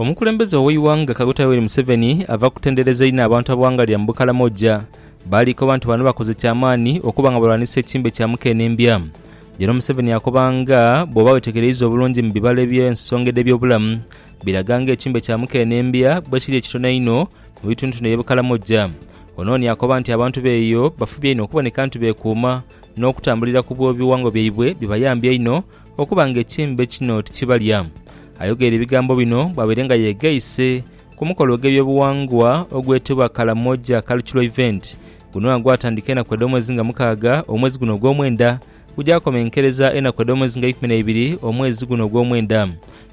Omukulembeze ow'eighanga Kaguta Yoweri Museveni ava kutendereza inho abantu abawangalira mu Bukalamoja, baali koba nti bano bakoze kyamaani okuba nga balwanisa ekimbe kya mukenembya. Jeno Museveni akoba nga bwoba wetegereiza obulungi mu bibalo eby'ensonga edh'ebyobulamu, biraga nga ekimbe kya mukenembya bwekiri ekitono einho mu bitundutundu ebye Bukalamoja. Ono ni akoba nti abantu beeyo bafubye inho okuboneka nti bekuuma n'okutambulira ku bw'ebiwango byaibwe bibayambye inho Okuba nga ekimbe kino tikibalya. Ayogeire ebigambo bino bwabaire nga yegaise ku mukolo ogw'ebyobughangwa ogwetebwa Karamoja Cultural Event. Guno agwatandika enaku edh'omwezi nga mukaaga omwezi guno ogw'omwenda gugyakomenkereza enaku edh'omwezi nga ikumi n'eibiri omwezi guno ogw'omwenda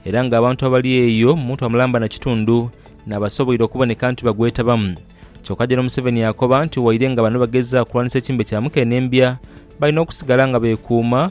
era nga abantu abali eyo mu mutwa mulamba na kitundu n'abasoboire okuboneka nti bagwetabamu kyoka General Museveni yakoba nti waire nga bano bageza kulwanisa ekimbe kya mukenembya balina okusigala nga bekuuma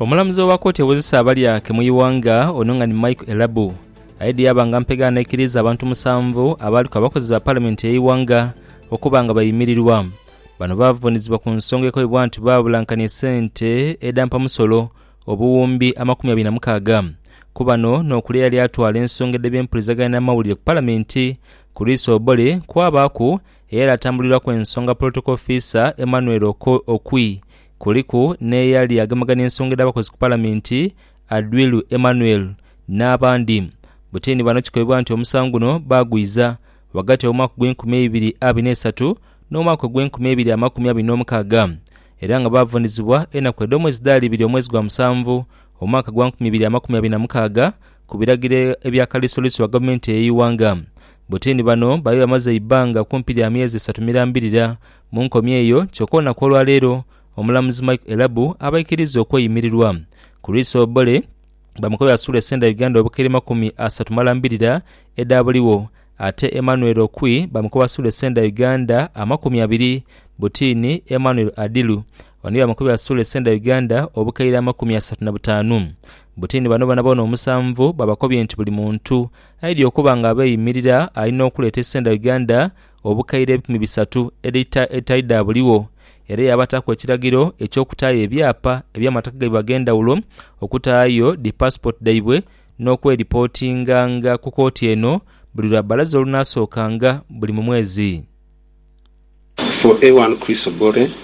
Omulamuzi owa kooti ewozesa abalyake mu ighanga ono nga ni Michael Elabu aye dhiyaaba nga mpegho anaikiriiza abantu musanvu abaaliku abakozi ba Palamenti y'eighanga okuba nga baimirirwa. Bano baavuunizibwa ku nsonga ekoibwa nti baabulankania esente edha mpamusolo obuwumbi amakumi abiri na mukaaga ku bano n'okuli eyali atwala ensonga edh'ebyempuliziganya n'amawulire ku Palamenti Chris Obore kwabaaku eyali atambulirwaku ensonga Protocol Officer Emmanuel Okwi Kuliku n'eyali agemagana ensonga edh'abakozi ku Palaminti, Adwilu Emmanuel, n'abandi. Butini bano kikolebwa nti omusango guno baagwiza ghagati w'omwaka ogw'enkumi eibiri abiri n'eisatu n'omwaka ogw'enkumi eibiri amakumi abiri n'omukaaga era nga baavunizibwa enaku edh'omwezi dhaali ibiri omwezi gwa musanvu omwaka gwa nkumi ibiri amakumi abiri na mukaaga ku biragiro ebya Kaliisoliiso wa Gavumenti ey'eighanga. Butini bano baali bamaze eibbanga kumpi lya myezi esatu mirambirira Mu nkomi eyo, kyoka olunaku olwa leero, Omulamuzi Mike Elabu abaikiriza okweyimirirwa. Chris Obore bamukobera suula esenda Uganda obukira emakumi asatu malambirira edha buligho ate Emmanuel Okwi bamukoba suula esenda Uganda amakumi abiri buti ni Emmanuel Adilu oni bamukobera suula esenda Uganda obukaire amakumi asatu na butaanu buti ni bano bonaboona omusanvu babakobye nti buli muntu aidhi okuba nga abeyimirira alina okuleeta esenda Uganda obukaire ebikumi bisatu elita edhitali dha buligho, era yaabataku ekiragiro eky'okutaayo ebyapa eby'amataka gaibwe ag'endhaghulo, okutaayo dhi paasipooti dhaibwe n'okweripotinganga ku kooti eno buli lwa bbalaza olunaasookanga buli mu mwezi. For A1 Chris Ogore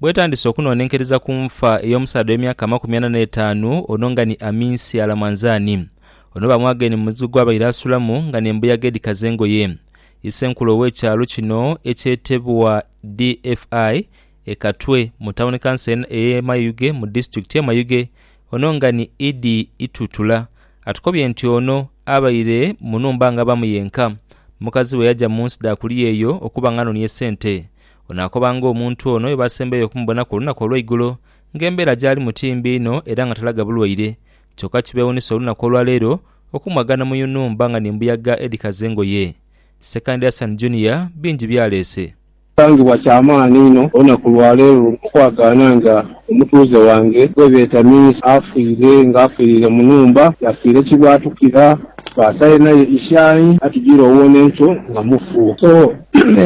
Bwetandise okunonenkereza ku nfa ey'omusaadha ow'emyaka amakumi ana n'etaanu ono nga ni Aminsi Alamanzani. Ono bamwagaine mu muzigo gw'abaire asulamu nga n'embuyaga edhikaza engoye. Isenkulu ow'ekyalo kino ekyetebwa DFI e Katwe mu tawuni kanso ey'e Mayuge mu disitulikiti ye Mayuge ono nga ni Idi Itutula atukobye nti ono abaire mu nhumba nga abamu yenka mukazi we yaja mu nsi dha kuliya eyo okuba nga anonie sente Onaakoba ng'omuntu ono bwe baasembayo okumubona ku lunaku olw'eigulo ng'embeera gy'alimu ti mbi inho era nga talaga bulwaire. Kyoka kibeewuunisa olunaku olwa leero okumwaga n'omuyunumba nga ni mbuyaga edhikaza engoye. Ssekandi Hassan Junior bingi by'aleese. Kisangibwa kya maani inho olunaku lwa leero okwagaana nga Omutuuze wange gwe beeta Miisa afiire nga afiiriire mu nhumba, yafiira ekibaatukira, baasayo naye ishaayi atujire owona enkyo nga mufu. So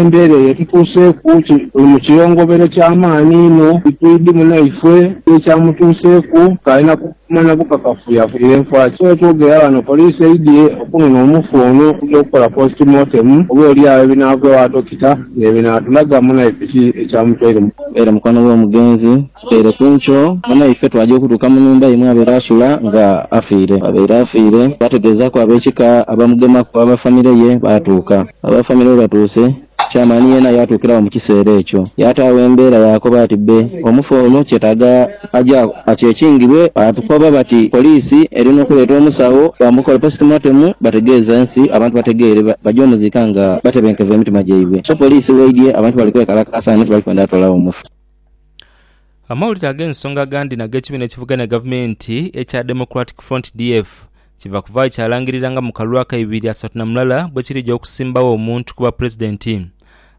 embeera eyo etutuuseeku tuli mu kiyongobero kya maani inho. Titwidhi munaifwe kiki ekyamutuuseeku, k'alinaku Okumanya bukakafu yafunire nfa ki? Wetwogera ghano poliisi eidhye okunona omufu ono okugya okukola post mortem oba olyagho ebinaavagho a dokita nebinaatulaga munaife ki ekyamutwaire mu. Era mukwano w'omugenzi Kiteere Kunco munaife twagya okutuuka mu nhumba ye mwabaire asula nga afiire. Bwabaire afiire twategeezaaku ab'ekika abamugemaku aba famire ye baatuuka. Aba famire bwebatuuse Chairman yeena yaatuukira agho mu kiseera ekyo. Yaataagho embeera yaakoba ati, Bbe, omufu ono kyetaaga aje akyekingibwe. Baatukoba bati, Poliisi eri n'okuleeta omusawo bamukole postmortem bategeeze ensi, abantu bategeere baje omuziika nga batebenkevu emitima gyaibwe. So poliisi bw'eidhye, abantu bali kwekalakaasa nti bali kwenda toolagho omufu. Amawulire ag'ensonga agandi n'ag'ekibiina ekivuganya gavumenti ekya Democratic Front, DF, Kiva kuvaayo kyalangirira nga mu kalulu aka ibiri asatu na mulala bwekirija okusimbagho omuntu kuba Pulezidenti.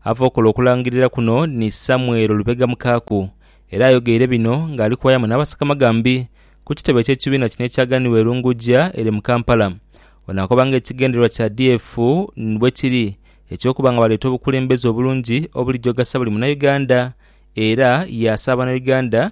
Ava okola okulangirira kuno ni Samuel Lubega Mukaaku era ayogeire bino nga ali kuwayamu n'abasakamagambi ku kitebe ky'ekibiina kino ekyaganibwa e Lungujja ere mu Kampala. Ono akoba nga ekigendererwa kya DF bwekiri eky'okuba nga baleeta obukulembeze obulungi obulijogasia buli Munauganda era yaasaba Banauganda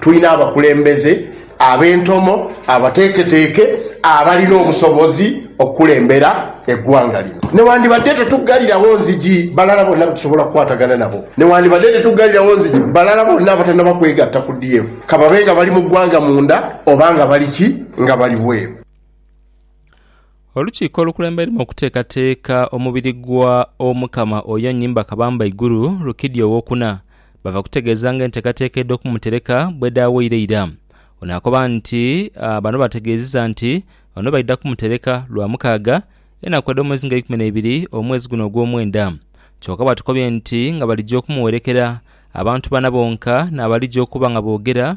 Tulina abakulembeze ab'entomo, abateeketeeke, abalina obusobozi okukulembera eggwanga lino. Newandibadde tetuggalirawo nzigi balala bonna be tusobola okukwatagana nabo, newandibadde tetuggalirawo nzigi balala bonna abatanaba kwegatta ku DF, ka babe nga bali mu ggwanga munda oba nga bali ki, nga bali bweru. Olukiiko olukulembeiremu okuteekateeka omubiri gwa Omukama oyo Nnyimba Kabamba Iguru, Rukidi Owokuna, bava kutegeeza nga enteekateeka edh'okumutereka bwedhaawaire eira. Ono akoba nti bano baategeeziza nti ono baidha kumutereka Lwamukaaga, enaku edh'omwezi nga eikumi neibiri omwezi guno ogwomwenda. Kyoka baatukobye nti nga balija okumuwerekera abantu bana bonka n'abalija okuba nga boogera,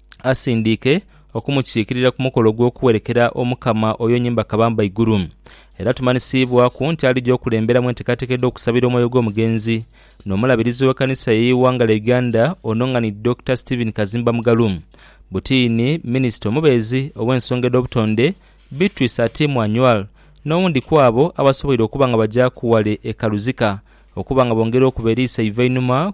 asindiike okumukiikirira ku mukolo ogw'okuwerekera Omukama oyo nyimba kabamba igulu. Era tumanhisiibwaku nti alija okulemberamu enteekateeka edh'okusabira omwoyo gw'omugenzi n'Omulabirizi w'Ekanisa y'eighanga lya Uganda Ononghani Dokita Stephen Kazimba Mugalu, Butiini, Minisita omubeezi ow'ensonga edh'obutonde Beatrice Atim Anywar n'owundi kw'abo abasoboire okuba nga bagyaku ghale e Kaluzika okuba nga bongera okuba eriiso eiva einhuma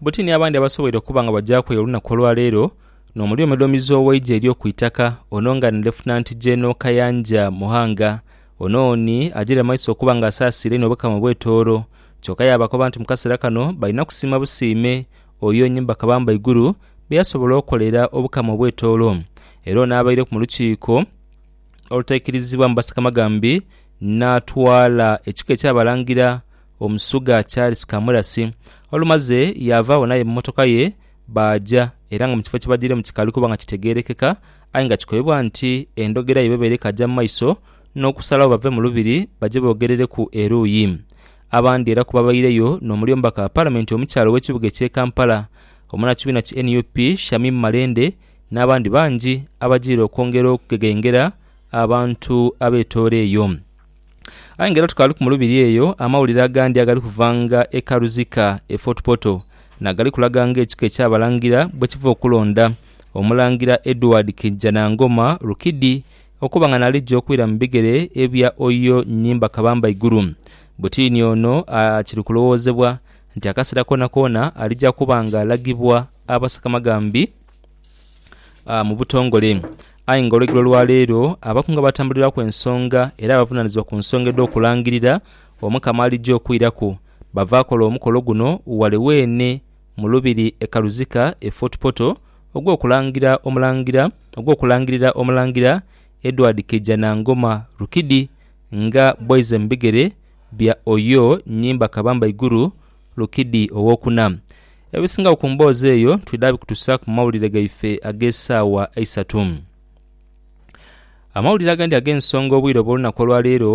Buti ni abandi abasoboire okuba nga bajaku eyo olunaku olwa leero nomuli omudhomizi ow'eigye ery'oku itaka ono nga ni Lefutinanti Gyeno Kayanja Muhanga. Ono ni agyire mu maiso okuba nga asaasiira inho Obukama obw'e Tooro. Kyoka yaabakoba nti mu kaseera kano balina kusiima busiime oyo Nyimba Kabamba Iguru bye yasobola okolera Obukama obw'e Tooro. Era ono abaireku mu lukiiko olutaikirizibwamu Basakamaghambi n'atwala ekika eky'Abalangira Omusuga Charles Kamurasi olumaze yaavaagho n'aye mu mmotoka ye baaja era nga mu kifo kye bajiiremu kikaali kuba nga kitegeerekeka aye nga kikobebwa nti endhogera yaibwe ebeera ekaja mu maiso n'okusalagho bave mu Lubiri baje boogerereku eruuyi abandi era ku babaireyo n'omuli omubaka wa Palamenti omukyala ow'ekibuga eky'e Kampala, omunakibiina ki nup Shamim Malende n'abandi bangi abajiire okwongera okugegengera abantu abetoola eyo. Aye nga era tukaaliku mu lubiri eyo, amawulire agandi agali kuvanga e Karuzika e Fort Portal nagali kulaga nga ekika eky'Abalangira bwekiva okulonda Omulangira Edward Kijanangoma Rukidi okuba nga nalija okwira mu bigere ebya Oyo Nyimba Kabamba Iguru. Butiini ono kiri kulowoozebwa nti akaseera koonakoona alija kuba nga alagibwa Abasakamaghambi. mu butongole. Aye nga olwegero lwa leero abakunga batambuliraku ensonga era abavunanizibwa ku nsonga edhokulangirira Omukama alija okwiraku bava kola omukolo guno wale weene mu Lubiri e Kaluzika e Fort Portal ogw'okulangira Omulangira ogw'okulangirira Omulangira Edward Keija Nangoma Rukidi nga bwaize mu bigere bya Oyo Nyimba Kabamba Iguru Lukidi owokuna. Ebisingagho ku mboozi eyo twidha bikutusa ku mawulire gaife ag'esaawa eisatu. Amawulire agandi ag'ensonga obwire obw'olunaku olwa leero.